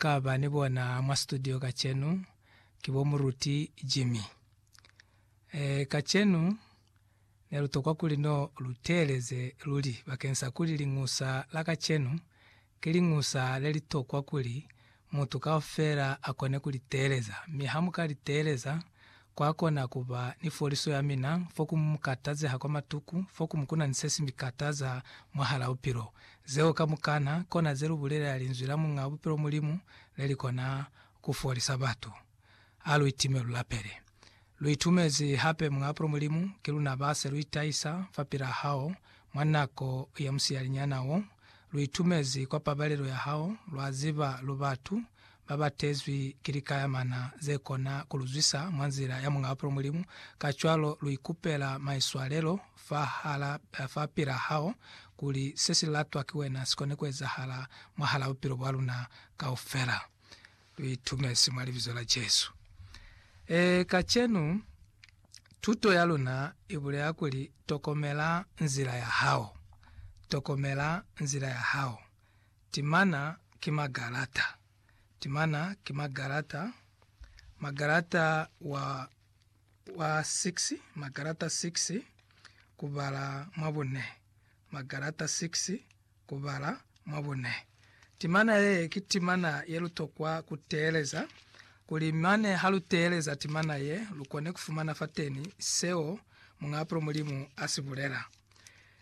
ka ba ni bona mwa situdio kacenu ki bo Muruti Jimmy. E, kacenu ne lu tokwa kuli no lu teeleze luli bakeng sa kuli Liñusa la kacenu ki Liñusa le li tokwa kuli mutu kaufela a kone ku li teeleza, mi ha mu ka li teeleza, Kwa kona ku ba ni foliso ya mina fo ku mu katazeha kwa matuku, fo ku mu kuna ni se si mi kataza mwahal'a bupilo. Zeo kamukana kona ze lu bulelela linzwi la Muñ'a Bupilo Mulimu le li kona ku folisa batu. A lu itime lu lapele. Lu itumezi hape Muñ'a Bupilo Mulimu, ki luna ba se lu itahisa fapil'a hao mwa nako ya musiyalinyana wo. Lu itumezi kwa pabalelo ya hao, lwa ziba lu batu ba ba tezwi ki likayamana ze kona ku lu zwisa mwa nzila ya Muñ'a Bupilo Mulimu, kacwalo lu ikupela maiswalelo fahala, fa pila hao, kuli se si latwa ki wena si kone ku ezahala mwahal'a bupilo bwa luna kaufela. Lu itumezi mwa Libizo la Jesu. Ee, kacenu tuto ya luna i bulela kuli, Tokomela nzila ya hao. Tokomela nzila ya hao. Timana ki magalata. Timana ki magalata. Magalata wa, wa 6, magalata 6, kubala mwa bune. Magalata 6, kubala mwa bune. Timana ye ki timana ye lu tokwa ku teeleza, kuli mane ha lu teeleza timana ye, lu kone ku fumana fateni seo Muñaapulo Mulimu a si bulela.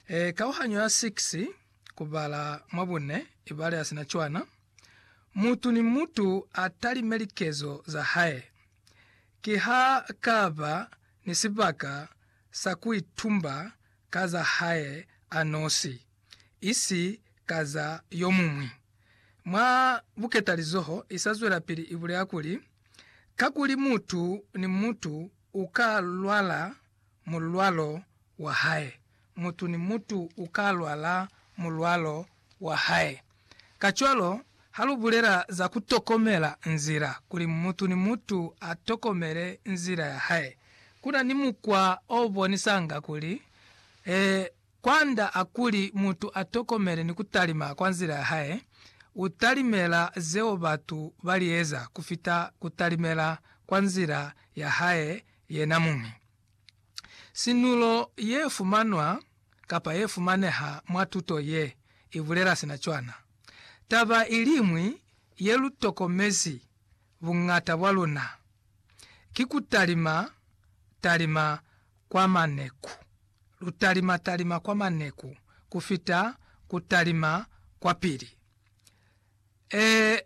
E, kauhanyo ya 6, kubala mwa bune ibale asina cwana, mutu ni mutu atalime likezo za hae. Ki ha kaba ni sibaka sa kuitumba ka za hae anosi, isi ka za yomuñwi. Mwa buketalizoho, isazwelapili ibulela kuli, Kakuli mutu ni mutu uka lwala mulwalo wa hae. Mutu ni mutu u ka lwala mulwalo wa hae. Kacwalo, ha lu bulela za ku tokomela nzila kuli mutu ni mutu a tokomele nzila ya hae, ku na ni mukwa o bonisanga kuli, ee, kwand'a kuli mutu a tokomele ni ku talima kwa nzila ya hae, u talimela zeo batu ba li eza ku fita ku talimela kwa nzila ya hae yena muñi. Sinulo ye fumanwa kapa ye fumaneha mwa tuto ye i bulela sina cwana. Taba i liñwi ye lu tokomezi buñata bwa luna ki ku talima talima kwa maneku. Lu talima talima kwa maneku ku fita ku talima kwa pili. Ee,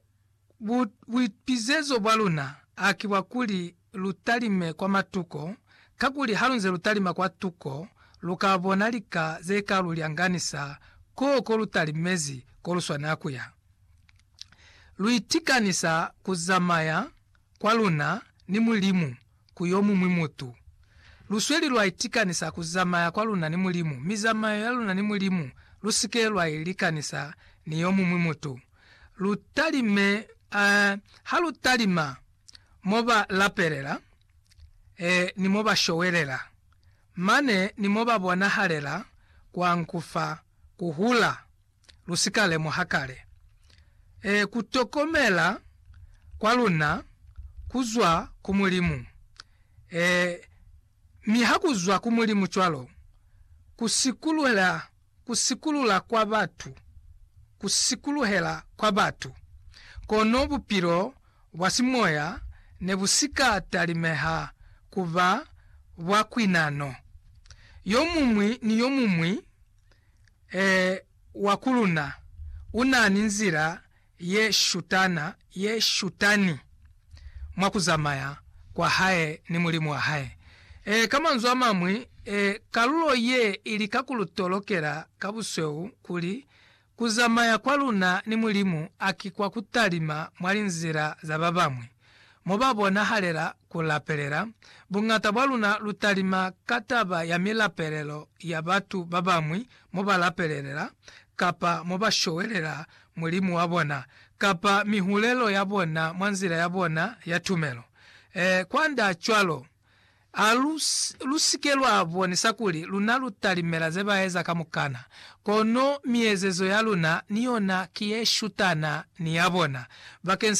bu, buipizezo bwa luna a ki bwa kuli lu talime kwa matuko, kakuli halunze lu talima kwa tuko, lu ka bona lika ze ka lu lyanganisa koo ko lu talimezi ko lu swanela ku ya. Lu itikanisa ku zamaya kwa luna ni Mulimu ku yomuñwi mutu. Lusweli lwa itikanisa ku zamaya kwa luna ni Mulimu, mi zamayo ya luna ni Mulimu lusike lwa i likanisa ni yomuñwi mutu. Lu talime, eh, ha lu talima mo ba lapelela, eh, ni mo ba showelela, mane ni mo ba bonahalela kwa nkufa, ku hula. lu si ka lemuha kale. Ee, ku tokomela kwa luna ku zwa ku Mulimu. Ee, mi ha ku zwa ku Mulimu cwalo, ku sikuluhela, ku sikulula kwa batu, ku sikuluhela kwa batu, kono bupilo bwa simoya ne bu si ka talimeha ku ba bwa kwinano. Yomuñwi ni yomuñwi. Ee, wa ku luna u na ni nzila ye shutana, ye shutani mwa ku zamaya kwa hae ni Mulimu wa hae. Ee, ka manzwi a mañwi, ee, kalulo ye i lika ku lu tolokela ka busweu kuli ku zamaya kwa luna ni Mulimu a ki kwa ku talima mwa linzila za ba bañwi. mo ba bonahalela ku lapelela, buñata bwa luna lu talima ka taba ya milapelelo ya batu ba bañwi mo ba lapelelela, kapa mo ba showelela Mulimu wa bona, kapa mihulelo ya bona mwa nzila ya bona ya tumelo. Ee, kwand'a cwalo, a lu, lu si ke lwa bonisa kuli luna lu talimela ze ba eza kamukana, kono miezezo ya luna ni yona ki ye shutana ni ya bona, bakeng sa